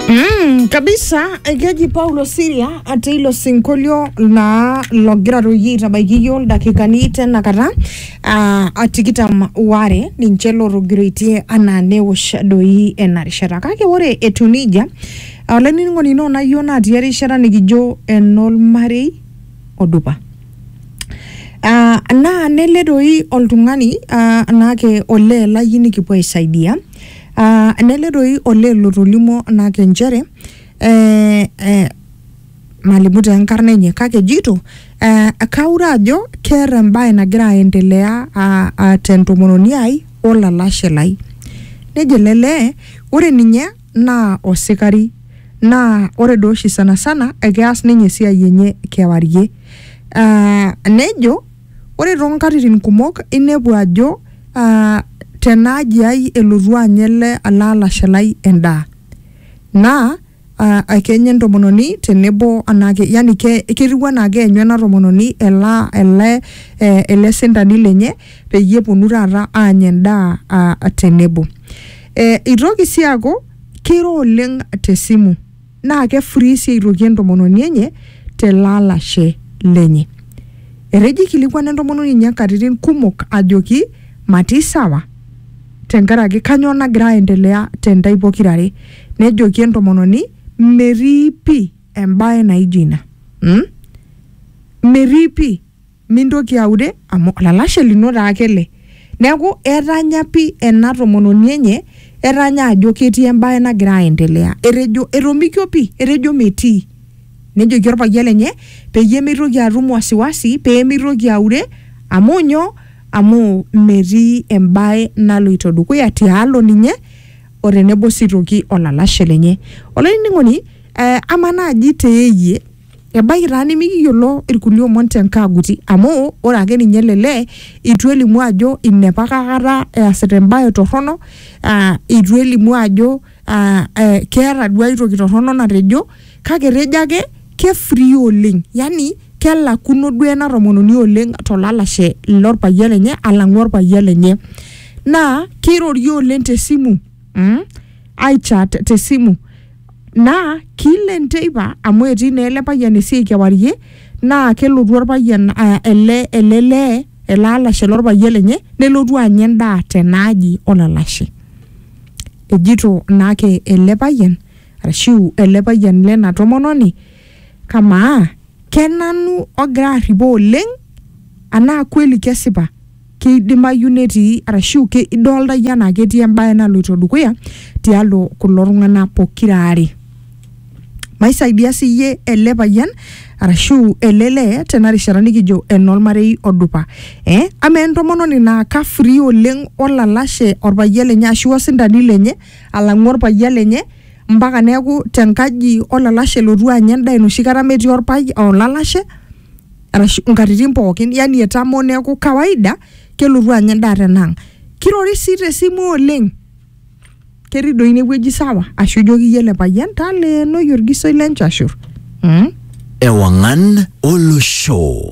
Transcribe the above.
Mm, kabisa ekeji paulo siria ate ilo sinkolio naa logira toi aitabaiki iyiok ildakikani tenakata uh, atikitam ware ninche lotogiroitie anaa newosh doi ena rishata kake ore etu nejia olainining'oni ino nayio natii erishata nikijo enolmarei odupa uh, naa nele doi oltung'ani uh, naake olee lai nikipuo aisaidia Ah, nele doi olee lotolimuo nake nchere eh, eh, malimu taa enkarna enye kake ejito eh, kaure ajo keeta embae nagira aendelea ah, ah, tentomononi ai olalashe lai nejo ele lee ore ninye naa osikari naa ore doi oshi sana sana ekeas ninye esiai enye kewarie ah, nejo Ore too nkatitin kumok inepu ajo aa tena aji ai elotu anya ele ele alashe lai endaa naa aa kenya entomononi tenebo anaake yani ke ketiu enaa keenyu ena tomononi ela ele ee ele sindani lenye peyie eponu taata aanya endaa aa tenebo. Ee itoki sii aaku kiro oleng' te simu. Naa kefurii sii aitoki entomononi enye te lalashe lenye. Etejo eikilikuana entomononi enye nkatitin kumok ajoki matii sawa tenkaraki kanyoo nagira aendelea te ntae pokira are. Nejoki entomononi metii pii embae naijo ina. Metii pii. mintoki aure amu olalashe lino taa ake ele. Neeku etanya pi ena tomononi enye, etanya ajo ketii ebae nagira aendelea. Etejo etomikio pi, etejo metii. Nejoki orpayian lenye, peyie mitoki atum wasiwasi, pemitoki aure, amu nyoo, amu metii ebae naloito dukuya tialo ninye, o tenebo si toki olalashe lenye. Olainining'oni, amaa naji teyie Ebaiki taa nimikiyiolo irkulie omon te nkaaguti amu ore ake ninye ele lee eitu elimu ajo inepa ake kata easita embae torrono aa eitu elimu ajo aa ee keeta duo ai toki torrono natejo kake etejo ake ke free oleng. Yani kelakuno duo ena tomononi oleng to lalashe lo payian lenye alang'u orpayian lenye. Naa keirorie oleng te simu. mm? aichat te simu naa kilen teipa amu etii naa ele payian esiai kewarie naa kelotu orpayian uh, ele ele lee ele alashe lorpayian lenye nelotu anya endaa tenaaji olalashe ejito naake ele payian arashu ele payian lena tomononi kamaa kenanu ogira arripo oleng anaa kweli kesipa keidimayu netii arashu ke- idolta iyie anaa ketii embae naloito dukuya tialo kulo tung'anak pokira aare maisaidia siyie ele payian arashu ele lee tena rishata nikijo enormarei odupa eh? ama entomononi naa ka free oleng olalashe orpayian lenye ashu osindani lenye alang'u orpayian lenye mpaka neeku tenkaji olalashe elotu anya endaa enoshi kata metii orpayian olalashe arashu nkatitin pookin yani etamoo neeku kawaida kelotu anya endaa tenang kirori sii tesimu oleng ketii doi inewueji sawa ashu ijoki iyie ele payian taleenoi orgisoi lenchashur mm? Ewangan Olosho.